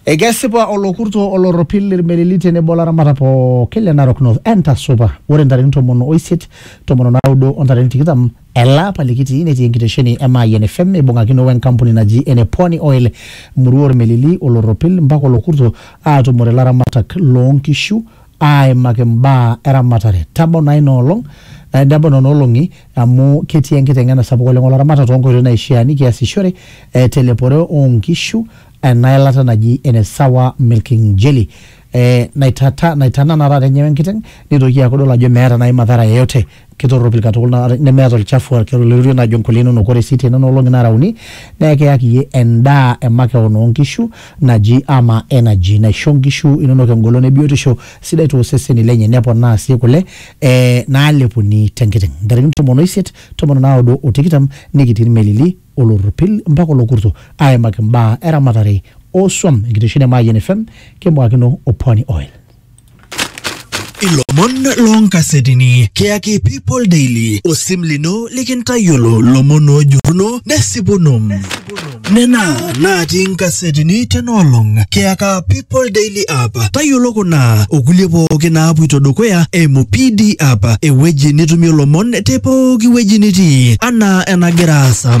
Ekesipa olokurto olorropil irmelili tenebo olaramatak pooki le Narok North entasupa ore ntarikini tomon oisiet tomon onaudo o ntarikini tikitam ele apa likitii netii enkitesheni e Mayian FM eibung'akino we nkampuni naji ene Pwani Oil murua ormelili olorropil mpaka olokurto aatumore laramatak loonkishu aaimaki mbaa eramatare. Tabau naa ina olong, eh, nebau nena olong'i amu ketii enkiteng'ena sapuk oleng olaramatak toonkoitoi naishiaa nikiasishore eh, telepore oonkishu ena ilata naji ene sawa milking jelly eh, naitata, naitanana taata enyewe enkiteng neitoki aaku idol ajo meeta naaji madhara yeyote. Kitorropil katukul naa nemeeta olchafu ake oloirorie naajo nkulie inonok. Ore sii tenena olong'i naara uni naa ekiyaki iyie endaa e makeon oo nkishu naji ama energy naisho nkishu inonok engolon e biotisho sidai too seseni lenye neponaa sii kule ee naalepuni te nkiteng'. Ntarikini tomon o isiet, tomon o naudo o tikitam nikitii ilmelili, olorropil mpaka olokurto aaimaki mbaa e ramatare oo swam. Enkitesheni e Mayian FM kimbung'akino o Pwani Oil. ilomon loonkasetini kiyaki people daily osim lino likintayiolo lomon oojuruno nesipuno nena naatii nkasetini tenaolong kiyaka people daily app tayiolo kuna okulie pooki naapuito dukuya eimu pd app ewueji nitumie lomon te pooki wueji nitii anaa enagira aasa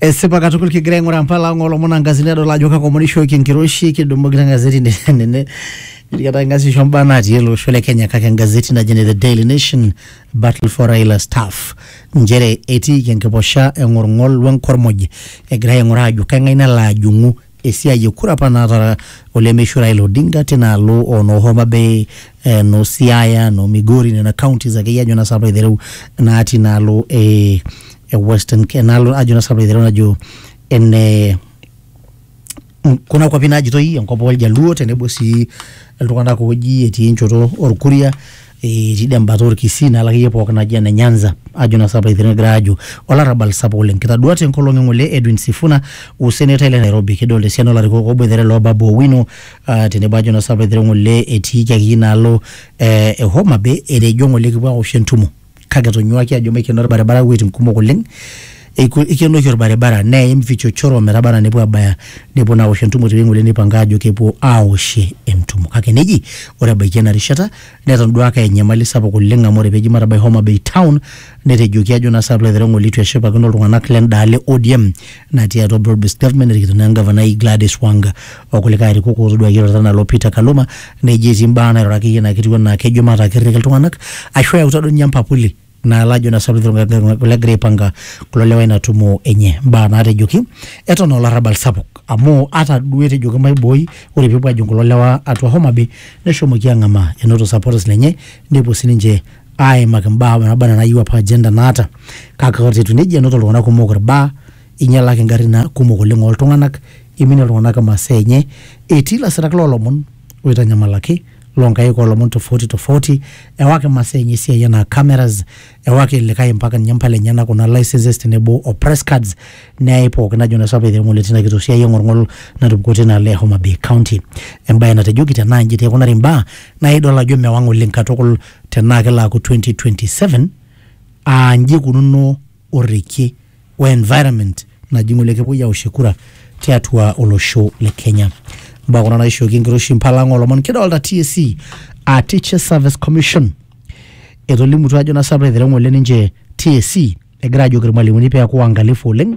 Esipa katukul kigira aing'uraa mpala ang' olomon angazini adol ajo kakomonishoki enkiroshi kidumu kila gazeti nene nikata ngazisho mbaa natii ele osho le Kenya kake engazeti naji ne The Daily Nation Battle for Raila Staff nchere etiiki enkiposha eng'orng'ol wenkormoj egirai aing'uraa ajo keng'ae nalo ajung'u esiai e kura apa naata olemeishu Raila Odinga tina alo o noo Homa Bay, eh, noo Siaya, noo Migori, nena counties akeyie ajo naa sapa aitereu natii inaalo e, e Western Ke- enaalo ajo naa sapa aitereu najo ene kuna kwapi naajitoi enkop oljaluo tenebo sii iltung'anak ooji etii enchoto orkuria eh, tidie embata orkisii nalo akeyie pookin naji ene nyanza ajo naa sapa ithira egira ajo olarrabal sapuk oleng kitaduat enkolong eng'ole edwin sifuna usenetai le nairobi kidolta esiana olarikok oboitare loo babu owino ah, tenebo ajo naa sapa ithira ng'ole etiiki akeyie inaalo eh, e homa bay etejo ng'ole kipuo awosh entumo kake etonyuaki ajo maikeno orbaribara iwuejitin kumok oleng Eiku, eikenoki olbaribara neim vichochoro metaba anaa nepuo aabaya nepuo naa aosh entumo tewueji ng'ole neipanga aajo kepuo aaoshie entumo. Kake neji ore ebaiki ena rishata netonduaaka enyamali sapuk oleng amu ore pee eji matabai Homa Bay Town netejoki ajo naa saai piilo aitereu eitu eshipakino iltung'anak lenda alo e ODM natii atua Broad Based Government erikito naa Engavanai Gladys Wanga okulikae arikok ootoduaki eirorita anaa loo Peter Kaluma neji etii mbaa naairura akeyie naa ketiu anaa kejo mataa kirrik iltung'anak ashu eyautua duo ninye empapuli naa lajo na saluti legira aipanga kulo lewa ina tumo enye mbaa naatejoki eton aa olarrabal sapuk amu ata duo etejoki maibooi ore peepuo ajing kulo lewa atua Homa Bay neshomoki ang'amaa enoto supporters lenye nepuo sininche aimaki mbaa naaba enaa nayieu apa agenda naata kake ata etiu nejia enoto iltung'anak kumok irbaa inyalaki ingarrin naa kumok oleng oltung'anak iminie iltung'anak imasaa enye etii ilasirak loolomon oitanyamalaki loo nkaik oolomon tofauti tofauti, ewaki masaa enye esiai enaa cameras, ewaki likae mpaka ninye impala enyena kuna licenses tenebo o press cards neyai pookin ajo naa sapee eng'ole tina kitok siai eng'olng'ol natupukuo tina alo e Homa Bay County. Embae natejoki tenaa inji taa eikunari imbaa naa idol ajo mewang' oleng katukul tenaa kelo aaku 2027 aa nji eikununo orrekie o environment naji ng'ole kepuoi aoshie kura tiatua olosho le Kenya. Mbaa kuna naishooki enkiroshi mpalang olomon kidolta TSC a Teacher Service Commission etolimutua ajo nasapita aitereu ng'ole ninche TSC egira ajoki irmalimuni peeku waangalifu oleng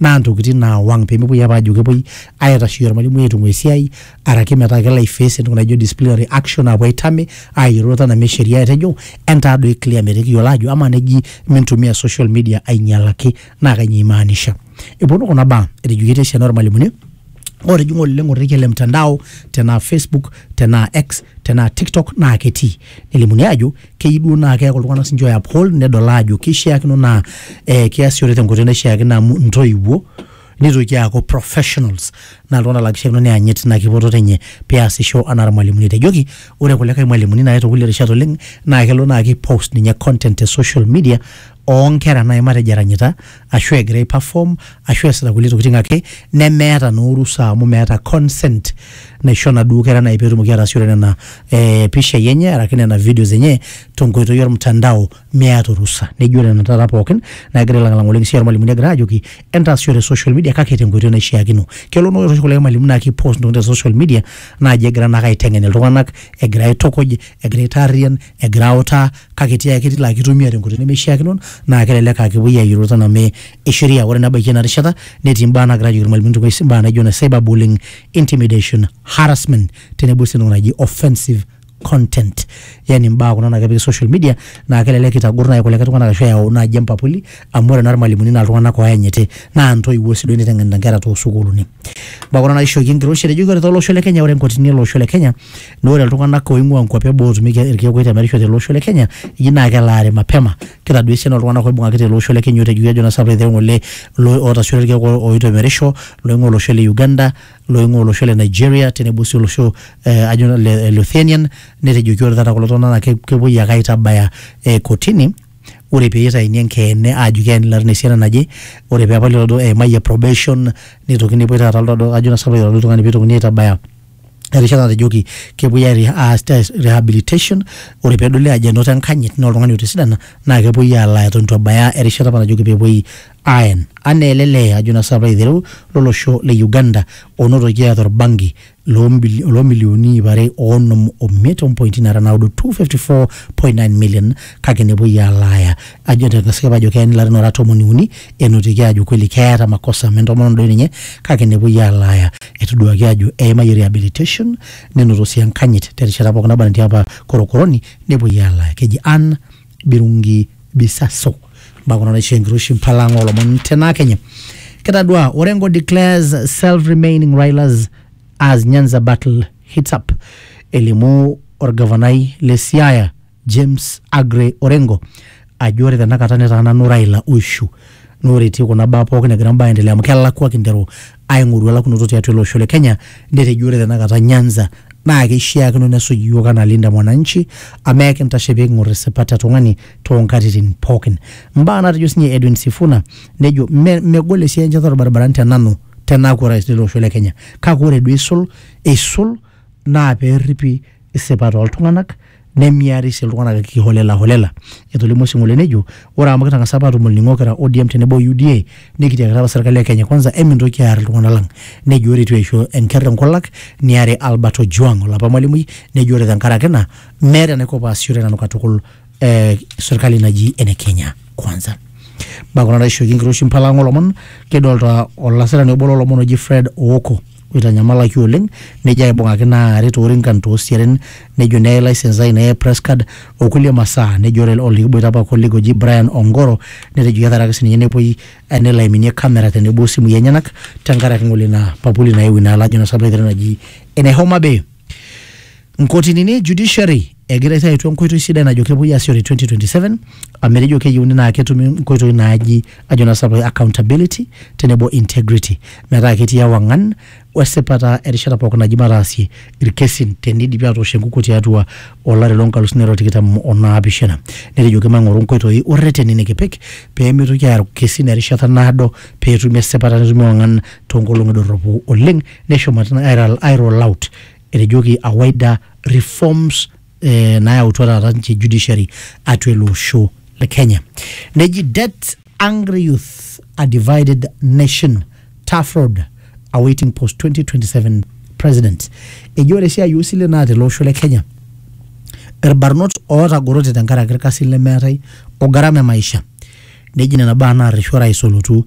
naa ntokitin naawang pemepuoi apa ajo kepuoi aitasheyie ormalimui aitung'ua esiai araki metaa kelo aiface entoki naijo disciplinary action apuo aitame ayiolou enaa sheria etejo entaa doi clear metaa ekiyiolo ajo amaa neji mintumia social media ainyialaki naa kanyio imaanisha eponu kuna baa etejoki etii esiana ormalimuni otijing'a oleng orrekie le mtandao tenaa facebook tenaa x tenaa tiktok naa ketii nelimuni ajo keyieu duo naa keeku iltung'anak sinche oe uphold nedol aajo kishiakino naa eh, kiasishore tenkoitoi naishiakino amu intoiwuo nitoki aaku professionals naa iltung'anak laa kishiakino neyanyit ina kipototo enye peasisho anaa irmalimuni etejoki ore kulikae malimuni naaye tokulie rishat oleng naa kelo naa ki post ninye content te social media oonkera naaji matejo eranyita ashu egira aiperform ashu eesita kulie tokiting ake nemeeta naa orusa amu meeta consent naisho naduo kera naaji petumoki ataasishore nena eh, pishai enye araki nena videos enye tenkoitoi ormtandao meeta orusa nejo nena taata pookin naagira ailang'ilang'a oleng sininche irmalimuni egira ajoki entaasishore social media kake tenkoitoi naishiakino kelo naa ore oshi kulie malimuni naa ki post intokitin te social media naaji egira naake aiteng'en iltung'anak egira aitukuj egira aitaarriyian egira autaa kake tiai ake tilo ake itumia tenkoitoi nemeishiakino naa kelelek aa kepuoi ayiolou tena mee e sheria ore nebaiki ena rishata netii imbaa naagira ajoki irmalimuni tewueji imbaa naijo ine cyber bullying, intimidation, harassment tenebo sii entoki naji offensive content yani imbaa kuna naa kepiki social media naa kelelek eitagor naaji kulikae tung'anak ashu eyau naaji empapuli amu ore naa irmalimuni naa iltung'anak oyanyiti naa intoiwuo sii duo eneiteng'enita inkera tosukuluni imbaa kuna naishooki enkiroshi etejoki ore tolosho le kenya ore inkotini ele osho le kenya Naa ore iltung'anak oing'ua nkuapi eboo otumieki irkeek oitemerisho tele osho le Kenya eji naa kelaare mapema. Kitadua esiana oltung'anak oibung'aki tele osho le Kenya otejoki ajo naa sapuk etii ng'ole otasioto irkeek oitemerisho loing'ua olosho le Uganda, loing'ua olosho le Nigeria tenebo sii olosho eh ajo naa le Luthanian netejoki ore taata kulo tung'anak naa kepuoi ake aitabaya eh kotini ore pitaini enkeene aajo keeni ilarin esiana naje, ore peepali lelo duo eimayie probation nitokini nepuoi taata ajo naa sapuk ilo tung'ani pitokini aitabaya erishata natejoki kepuoi ai- aas test rehabilitation ore pedoli ajo enoto enkanyit naa oltung'ani otisidana naa kepuoi alaa eton itu ebaya erishata apa najoki pepuoi aen anaa ele lee ajo naa sinanu piilo aitereu lolosho le Uganda onotoki eeta orbanki lombili lomilionini iip are onom omiet ompointi nara naudo 254.9 million kake nepuoi alaaya ajo te kosipa ajo keeni ilarin ora tomoni uni enotiki aajo kweli keeta makosa amu entomononi doi ninye kake nepuoi alaaya etoduaki aajo eimayie rehabilitation nenoto sii enkanyit terishata pookin naba netii apa korokoroni nepuoi alaaya keji Ann Birungi Bisaso mbaa kuna naishoo enkiroshi mpala ang oolomon tena kenye kitadua Orengo declares self remaining Raila's as Nyanza battle heats up elimu orgavanai le Siaya James Aggrey Orengo ajo ore tenakata netaa nanu Raila oishu naa ore etii kuna baa pookin egira mbaa aendelea amu kelakua kinteru aing'oru elakunoto tiatua ele osho le Kenya netejo ore tenakata Nyanza naa keishiakino nesuj iyiook anaa Linda Mwananchi amu ekintashe pee king'or isipat e tung'ani too nkatitin pookin. Mbaa naatejo sinye Edwin Sifuna nejo me megol esiai enchetare orbaribarani te nanu tenaaku orais lele osho le Kenya kake ore duo eisul eisul naa peerripi isipat oo ltung'anak nemiari sii iltung'anak kiholela holela. Etolimuo Sing'ole nejo, Ore amu kitang'asa apa atum olning'o kira ODM tenebo o UDA, nikitiakita apa serkali e Kenya Kwanza emintoki aar iltung'anak lang. Nejo ore eitu eisho enker enkulak niari Albert Ojwang olapa malimui nejo ore tenkaraki ina meeta enaiko paasishore nanu katukul eh, serkali naji ene Kenya Kwanza. Baa kuna naishooki enkiroshi mpala ang olomon kidolta olasirani obo lolomon oji Fred Ooko. oitanyamalaki oleng nejo aibung'aki naari toorinkan toosiatin nejo neye license ai neye press card okulie masaa nejo ore olikiboita apa colleague oji Brian Ongoro netejo ketaraki sininye nepuoi eh, nelo aiminie camera tenebo osimui enyenak tenkaraki ng'ole ina papuli naewuo inaalo ajo naa sabaitare naji ene Homa Bay nkotinini e judiciary egira aitayu enkoitoi sidai najo kepuoi aasishore 2027 amu etejo keyieuni naa ketumi nkoitoi naaji ajo naa sapu accountability tenebo integrity metaa ketii ewang'an wesipata erishata pookin naji mataasie irkesin tenidipi atoosh enkukuo tiatua olari loonkalusuni are o tikitam onaapishana netejoki mang'oru nkoitoi orreteni nikipik peemitoki aaku kesin erishata naado peetumi esipata netumi ewang'an toonkolong'i dorropu oleng neshomo airol out etejoki awaida reforms eh, nayautua taata ninche judiciary atua ele osho le kenya neji debt angry youth a divided nation tough road awaiting post 2027 president eji ore esiai oosilen naa tele osho le kenya irbarnot ootagorote tenkaraki irkasin lemeetae o gharama e maisha neji nena baa naarreshu orais olotu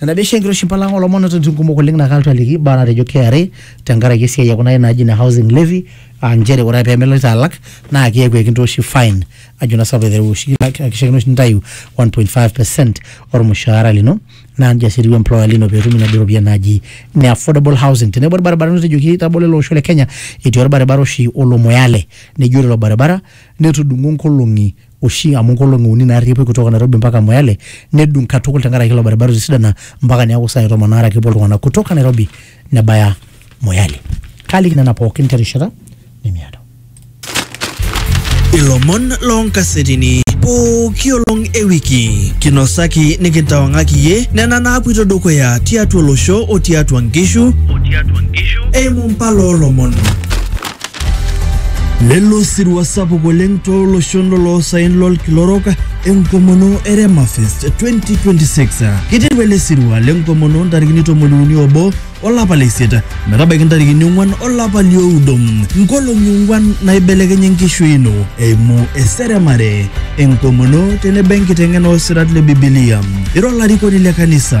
nena dei enkiroshi mpalanga olomon ototin kumok oleng naa kalotu aliki baa natejo KRA tenkaraki esiai e kuna naaji ine housing levy aa nchere ore ake pee meloito alak naa keeku ekintooshi fine ajo naa sinanu aiteru oshi kishakino oshi nintayu 1.5 percent ormushaara lino naa nejia sii etiu employer lino pee itum inaduo ropiyiani naaji ine affordable housing tenebo irbaribarani otejoki tabolo ele osho le kenya etii orbaribara oshi olo moyale neji ore ilo baribara netudung'o nkolong'i oshi amu nkolong'i uni naarri epuoi kutoka Nairobi mpaka Moyale nedung katukul tenkaraki ilo baribara otu esidana mpaka neeku saai tomon aare ake epuo iltung'anak kutoka Nairobi nebaya Moyale. Kaaliki nena pookin terishata nemiado. Ilomon loonkasetini pooki olong e wiki kinosaki nikintawang'aki iyie nena naapuito dukuya tiatua olosho o tiatua nkishu eimu mpala oolomon. Lelo osirua sapuk oleng tooloshon loloosaen lolkila orok enkomono e Remafest 2026. Keiteru ele sirua lenkomono ntarikini tomoni uni obo olapa le isiet metabaiki ntarikini ong'wan olapa lioudo. Nkolong'i ong'wan naibelekenya enkishui ino eimu eseremare, enkomono tenebo enkiteng'ena oosirat le Bibilia. Ira olarikoni le kanisa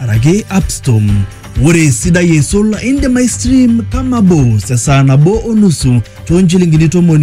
araki Appstom. Ore esidai eisul, indim aistream kama bos esaa nabo o nusu too nchilingini tomoni